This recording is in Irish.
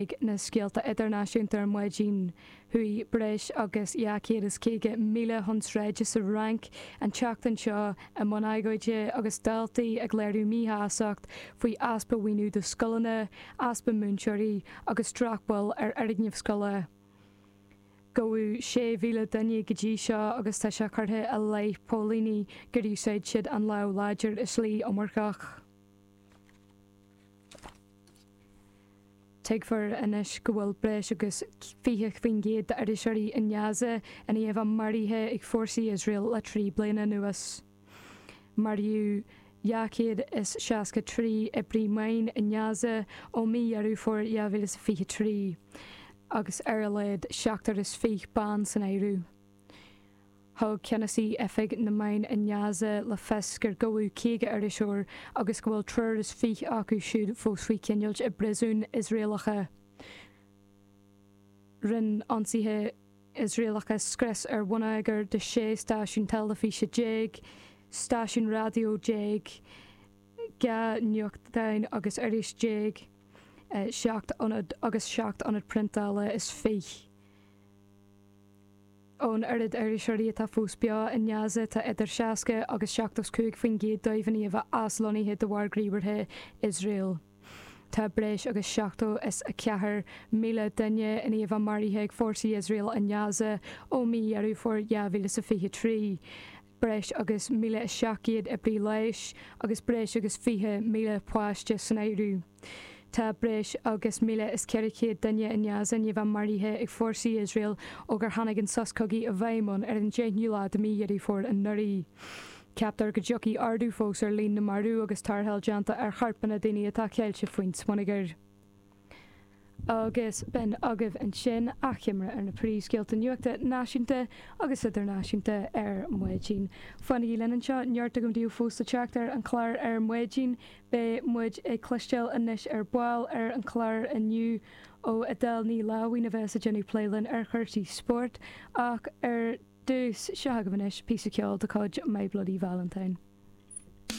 ag na scéalta idirnáisiúnta ar maidin, chuaigh breis agus 250,000 chun sráide sa Fhrainc an tseachtain seo i mbun agóide agus daltaí ag léiriú míshásacht faoi easpa mhaoiniú do scoileanna, easpa múinteoirí agus drochbhail ar fhoirgnimh scoile. Gabhadh 6,000 duine go dtí seo agus tá sé curtha i leith póilíní gur úsáid siad an lámh láidir i slí iomarcach. Tuigfear anois go bhfuil breis agus 20% d'iriseoirí i nGaza i ndiaidh a bheith maraithe ag fórsaí Iosrael le trí bliana anuas. Maraíodh 263 oibrí meán i nGaza ó mhí Dheireadh Fómhair 2023, agus ar a laghad 27 bean san áireamh. Thug ceannasaí Oifig na Meán i nGaza le fios gur gabhadh 50 iriseoir agus go bhfuil triúr is fiche acu siúd fós faoi choinneáilt i bpríosúin Iosraelacha. Rinne ionsaithe Iosraelacha scrios ar bhonneagar de 16 stáisiún teilifíse, stáisiún raidió déag, dhá nuachtáin agus iris déag, seacht n-ionad agus seacht n-ionad priontála is fiche. Ón oiread iriseoirí atá fós beo i nGaza, tá idir 60 agus 75 faoin gcéad dóibh i ndiaidh a bheith aslonnaithe de bharr gníomhartha Iosrael. Tá breis agus seachtó is a ceathair míle duine i ndiaidh a bheith maraithe ag fórsaí Iosrael i nGaza ó mí Dheireadh Fómhair 2023. breis agus 1,700 oibrí leighis agus breis agus 20,000 páiste san áireamh. Tá breis agus 1,400 duine i nGaza i ndiaidh a bheith maraithe ag fórsaí Iosrael ó gur tháinig an sos cogaidh i bhfeidhm ann ar an 10ú lá de mí Dheireadh Fómhair anuraidh. Ceaptar go dtiocfaidh ardú fós ar líon na marbh agus tarrtháil déanta ar chorpanna daoine atá ceilte faoin smionagar. agus b'in agaibh ansin achoimre ar na príomhscéalta nuachta náisiúnta agus idirnáisiúnta ar Maidin. Fanaigí linn anseo, neart agam daoibh fós le teacht ar an chlár ar maidin. Beidh muid ag cloisteáil anois ar ball ar an chlár inniu ó Edel Ní Láimhín a bheas ag déanamh plé linn ar chúrsaí spóirt ach ar dtús, seo agaibh anois píosa ceoil de chuid My Bloody Valentine.